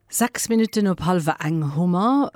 Sechs Minutten op hallwer eng hu mer,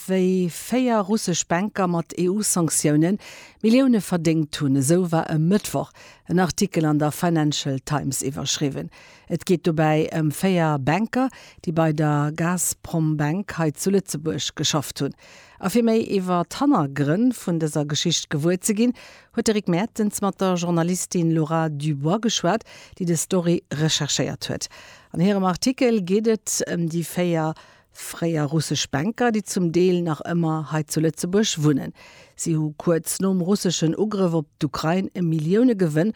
wéi véier russesch Banker mat EU-Sanktiounen Millioune verdéngt hunn. Esou war e Mëttwoch en Artikel an der Financial Times iwwerschriwwen. Et geet dobäi ëm véier Banker, déi bei der Gazprombank hei zu Lëtzebuerg geschafft hunn. A fir méi iwwer d'Hannergrënn vun dëser Geschicht gewuer ze ginn, huet de Rick Mertens mat der Journalistin Laura Dubois geschwat, déi des Story recherchéiert huet. An hirem Artikel geet et ëm déi véier fréier russesch Banker, déi zum Deel nach ëmmer hei zu Lëtzebuerg wunnen. Si hu kuerz nom russeschen Ugrëff op d'Ukrain e Milliounegewënn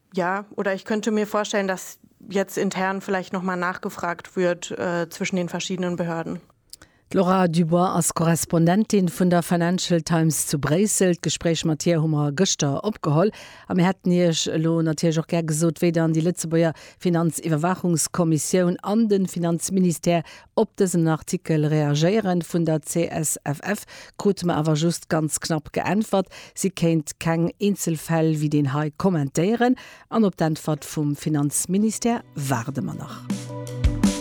Ja, oder ich könnte mir vorstellen, dass jetzt intern vielleicht noch mal nachgefragt wird äh, zwischen den verschiedenen Behörden. D'Laura Dubois ass Korrespondentin vun der Financial Times zu Bréissel. D'Gespréich mat hir hu mer gëschter opgeholl a mir hätten Iech elo natierlech och gär gesot, wéi dann déi Lëtzebuerger Finanziwwerwaachungskommissioun an de Finanzministère Op dësen Artikel reagéieren vun der CSFF krute mer awer just ganz knapp geäntwert, si kéint keng eenzel Fäll wéi deen hei kommentéieren an op d'Äntwert vum Finanzministère waarde mer nach.